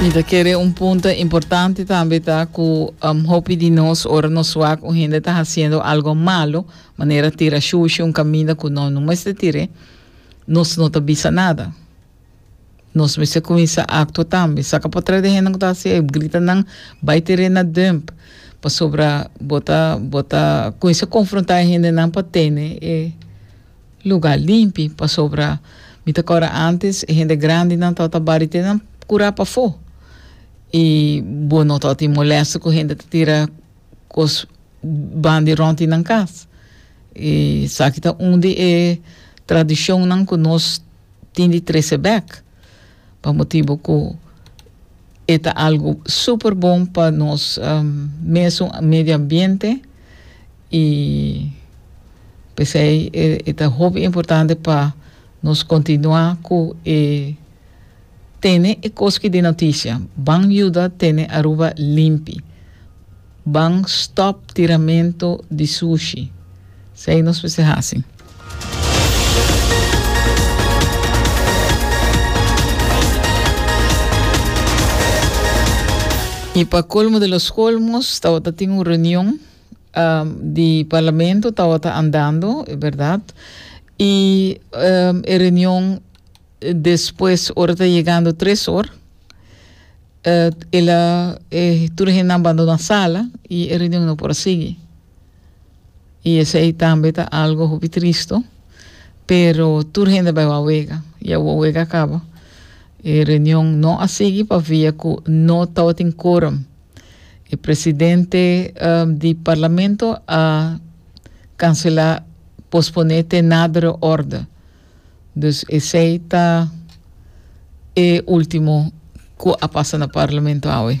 Mi ta kere un punto importante tambe ta ku um, hopi di nos ora nos wak un hende ta haciendo algo malo, manera tira shushi un kaminda ku no no mester tire, nos no ta bisa nada. Nos mester kuminsa aktua tambe. Saka pa tra di hende ku ta hasi e grita nan bai tire na dump pasobra bo ta bo ta kuminsa konfrontá e hende nan pa tene e lugar limpi pasobra mi ta kora antes e hende grandinan tabata bari te nan kura pafó i bo no tabatin molesto ku hende ta tira kos ban di rònt di nan kas i esaki ta un di e tradishonnan ku nos tin di trese bèk. pa motibu ku e ta algu super bon pa nos mesun medio ambiente i p'esei e ta hopi importante pa nos kontinuá ku e tene e kos ki di notisia ban yuda tene Aruba limpi. Ban stop tiramento di sushi. Sei nos mester hasi. Y pa colmo de los colmos tabata tin un reunión um, di parlamento tabata andando, verdad? Y um, e reunión después ora ta llegando tres hor. uh, el a, eh, tur hen nan bandona sala y e reunion no por sigui. Y esei tambe ta algo hopi tristo, pero tur hen de baiwa wega, y awa wega acaba. E reunion no a sigui pa via cu no tawatin quorum. E presidente uh, di parlamento a cancela, pospone te nadere orde. Dus esei ta e ultimo cu a pasa na Parlamento awe.